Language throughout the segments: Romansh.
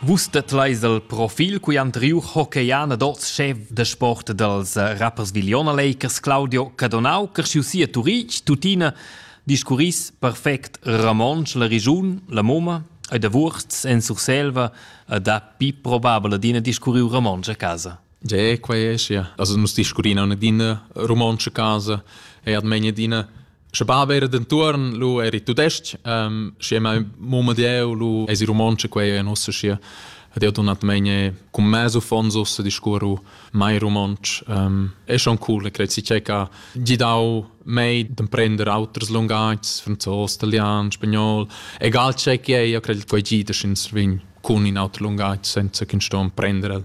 Vus tedleis el profil cui han triu hockeyana d'oz chef da sport dals rappers Viliona Lakers Claudio Cadonau, cresciu si a Turitg, tuttina discurris perfect romontsch la regiun, la moma e da Wurz en Surselva e dapi probabel adina discurriu romontsch a casa. Ge, quei è sia. Also nus discurrina in adina romontsch a casa e ad megna adina Sche bab era dentuorn lu eri tudestg, ähm, schi è mai mumma dieu lu esi romontsche quei e nossa schi ad io donatmegne cum mesu fonsos a discurru mai romontsch. Ähm, è schon cool, e credi che ha gidau mei d'emprender auters lungagis, franzos, italian, spagnol, egal che che io credi quei gida sin svin cun in auter lungaggio senza che sto emprender el.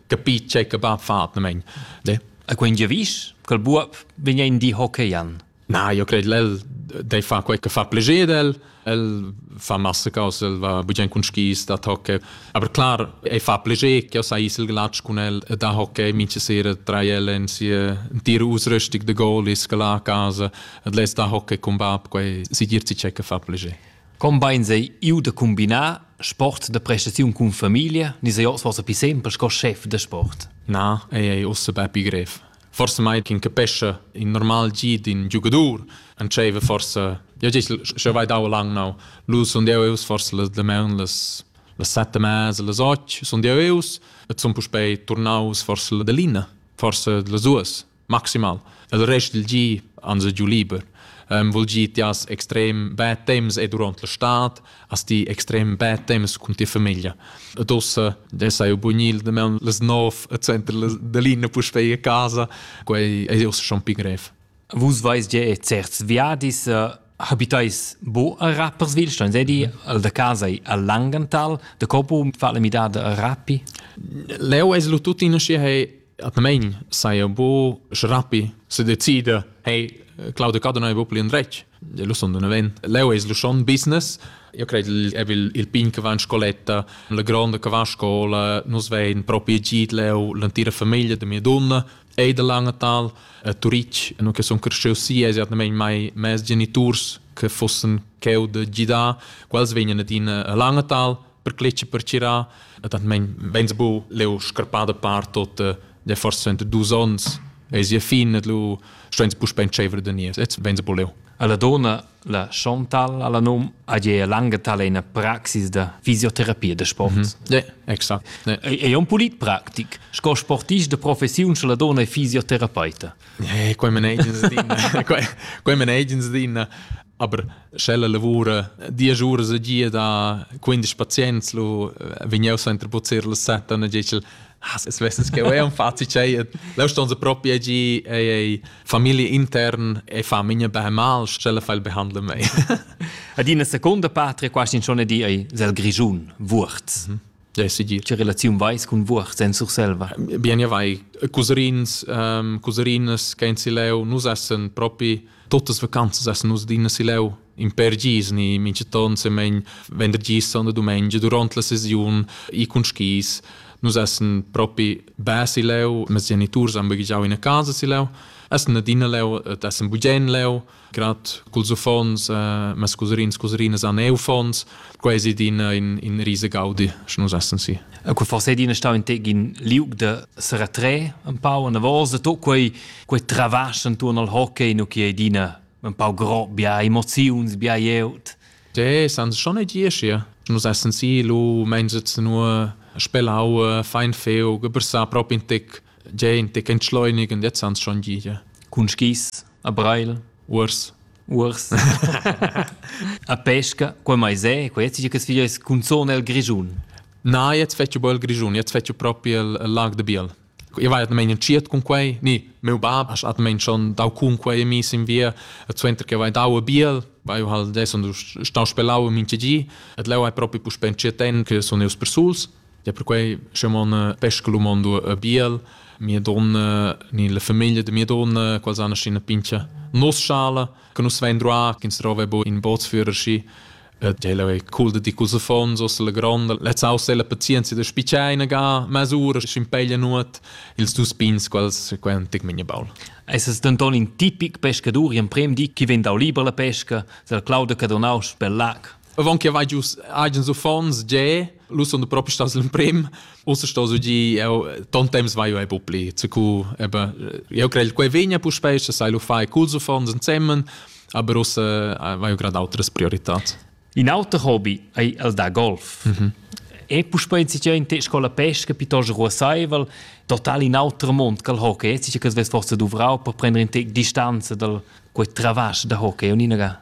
capi tgei che va fatnamein. A quei giavisch ch'el buob vegn in di hockeyjan. Na, io cred lel dei fa quei che fa pleger del, el fa massa cose, el va bugen cun skis da hockey, aber klar, ei fa pleger che sa isel glatsch cun el da hockey, minche sera drei ellen sie dir ausrüstig de goal is la casa, et les da hockey cum bab, quei si dir ci che fa pleger. Combines ei iu da cumbinar sport da prestaziun cun famiglia ni sei oz forsa pli sempel sco chef da sport? Na, ei ei ussa bepi grev. Forse mai ch'in capescha in normal gi d'in giugadur entscheiva forse ja gest sche vai dau lang nau lu sun deu eus forse las demaun las las sette mas las och sun deu eus et sun puspei turnaus forse la delina forse las duas maximal. Il rest dal gi ans è giu liber. Um, vuol dir, ti has extrem bad temps e durant la stad, hast ti extrem bad temps con tia famiglia. Ed ossa, da sai bunil, da meun les nov e center da linea puspei a casa, quei è ossa schon pi grev. Vus vais ge e certs viadis uh, habitais bo a Rapperswilstein, sei di al da casa a Langenthal, de Copo, fa le midade a Rappi? Leo es lu tuttina schi hei atnamein sai bu schrapi se decida hey Claudio Cado non è proprio in retg lo son d'un event leo es lo schon business io credo il è il pin che va in scoletta la gronda che va a scuola nus vein proprio git leo l'antira famiglia de mia donna e de Langenthal a Turic no che son cresciu si es atnamein mai mes geniturs che fossen cheu de gidar quels vegnan ad in a Langenthal per cletg per tira e tant men veins bu leu scarpada par tot de forse dus ons e sia fin et lu steins bu spen tschevre de nies et veins bu leu alla dona la Chantal alla num a je lange talena praxis da fisioterapia de sport. Mm -hmm. exakt. Ne. È un pulit praktik, sco sportist de professiun la dona è fisioterapeuta. Eh, qua me negens din. qua me negens din. Aber sch'ella lavura diesch uras e gia da quindisch pazients, lu vegn jeu suenter buzzir las set, dann dice ich, ah, se svesses che è un fazi c'è, leu ston se proprio gi ei ei famiglia intern e fa minha beh mal, sch'ella fa il behandle mei. Ad ina seconda patria quasi schon di ei sel grischun Wurz. Mhm. Ja, si dir. Che relaziun vais cun Wurz en Surselva? Bien ja vai, cousins, um, couserinas che in Sileu nus essen propi Tuttas vacanzas essen nus adina sileu in per gis ni minchaton semen vendergis und domenica durant la sesiun i cun skis nus essen propi be sileu mes geniturs han baghegiau ina casa sileu essen adina leu et essen bugen leu grad culs uffants äh, mes cusrins cusrinas han eu uffants Quai è ina in, in risa gaudi, sche nus essan si. E quai forse è ina stà in tegin liug de se retré un pau en avos de tot quei quei travasch intorno al hockey no che è ina un pau gro bia emoziuns bia jeut. De san schon ei dir sche nus essan si lu mein sitzen nur spelau fein feu gebrsar prop in tic de in tic entschleunigen jetzt ans schon dir. Cun skis a Breil? Urs. Uors. a pesca, quei mai se, quei jetzt che sfiglia es cunzone el Grischun. Na, jetzt fetchu bel Grischun, jetzt fetchu propi el, el lag de Biel. Io vai atmain entschiet cun quei, ni, meu bab ha atmain schon dau cun quei mis in via, et suenter che vai dau a Biel, vai hal des und stau spelau in minche gi, et leu hai propi puspè entschiet en che sun eus persuls, Ja perquei sche mon pesca lu mondo a biel mia donna ni la famiglia de mia donna quals han ina pincha nos schala che nus vein droa ins trova bo in bootsführer schi et ella è cool de di cosa fons os la gronda letz aus la pazienza de spiceina ga masura schimpeglia nuot ils dus pins quals quen tic minha baul Es es denton in tipic pescadur in prem di chi vegn dau liber la pesca, sel Claude Cadonaus per lac. Avant che vai giu agens uffants, ge, lu sun propi stas l'emprim. Ussa sto su gi, eu ton temps vai ei pupli. Cu eben, eu crei quei vegna puspei, se sai lu fai culs uffants ensemen, aber ussa vai eu grad outras prioritats. In auter hobby ei el da golf. Mm -hmm. E puspei in situaziun te scola pesca piuttosto ruasaivel, total in auter mond che il hockey. Sicher che svess forse duvrau per prendere in te distanza dal quei travasch da hockey, un'inaga.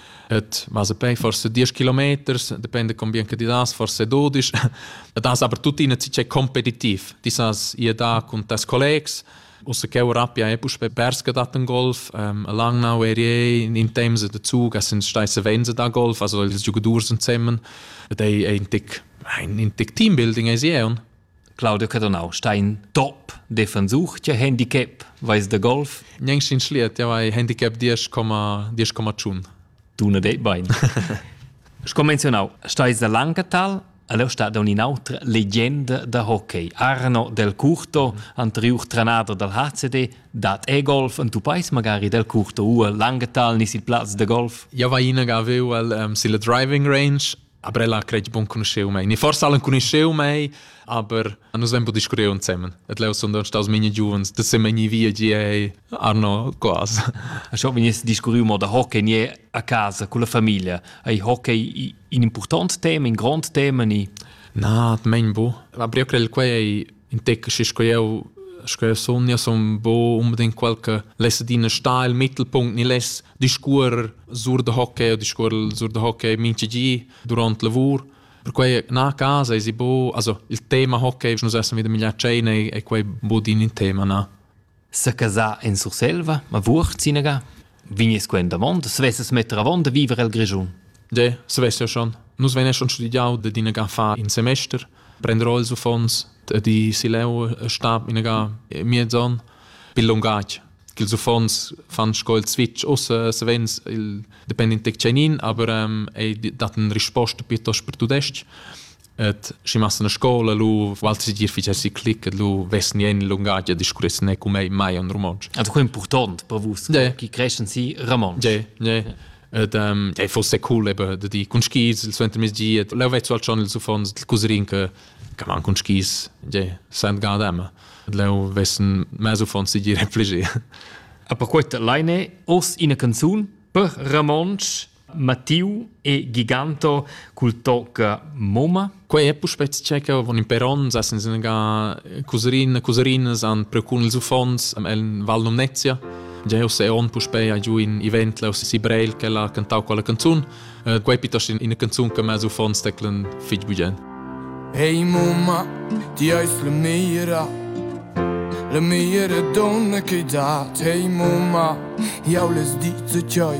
Et ma se pei forse 10 kilometers, depende con bien che ti das, forse 12. das aber tuttina ci c'è competitiv. Ti sas ihr da con tes collegs Usse che Rapia è pus perske dat in Golf, um, lang now ere in Tems de Zug, es sind steisse Wense da Golf, also die Giocador sind zusammen. Das ist ein Tick, ein, ein Tick Teambuilding ist hier. Claudio Cadonau sta in top defensur che handicap vais da golf Gnang sin schliet ja vai handicap 10,10,tschun Duna det bein Sco menzionau stais da Langetal Aleu sta da un'inautra legenda da hockey. Arno Del Curto, anterior trenader dal HCD, dat e-golf en tu pais magari Del Curto u a Langetal nis il plaz da golf? Ja vai inaga aveu el um, silla driving range Aber ella credi buon conosceu mei. Ni forse allen conosceu mei, aber nus hem bu discurreu insemmen. Et leu sun don staus mine giuvens, da se meni via gie Arno quas. A scho venies discurriu mo da hockey nie a casa con la famiglia. Ei hockey in important tema, in grond tema ni Na, mein bu. La brio crel quei ei in tec schi sco eu sco sun, io sun bu unbedingt quel che lesse din style Mittelpunkt ni less discuor sur da hockey o discuor sur da hockey mintgi durant lavur Perquei na casa esi bo, also il tema hockey, nus essem wieder migliar tscheina e quei bo din in tema na. Se casa in Surselva, ma vucht sinaga? Vignes quen davon, se vesses metter avon da viver el Grischun. De, se vess ja schon. Nus venes schon studiau de dinaga fa in semester, prendrò ils uffons di sileu stab inaga miezon bil lungatg. ch'ils uffants fan sco il switch. Ussa savens il depend in tec tschenin, aber ähm, ei dat eine risposta piuttosto per tudestg. Et si massan a scola lu Walter dir ficer si click et lu vessen jen lungagia discurressen ne cum ei mai un romansch. Also quello important per vus, yeah. chi creschen si romansch. Yeah, yeah. Et ähm, ja fosse cool eben de di cun skis il suenter mesgi et leu vezzo al schon ils uffants il cuserin che che man cun skis de St. Gardem. Leu vessen mez uffants si dire pflege. A per quei leine urs ina canzun per Ramonsch Mattiu e Giganto cul tocca Moma. Quei è puspè checker von in peron, sa sen singa couserin, couserin san precun ils uffants el Val Numnezia. Già se on puspè a giù in event leu si Breil che l'ha cantau quella canzun. Uh, quei piuttosto ina canzun che m'ha uffon steclen fich bugen. Hey mumma, ti hast la mira La mira donna che dat, hey mumma, jau les dice cioi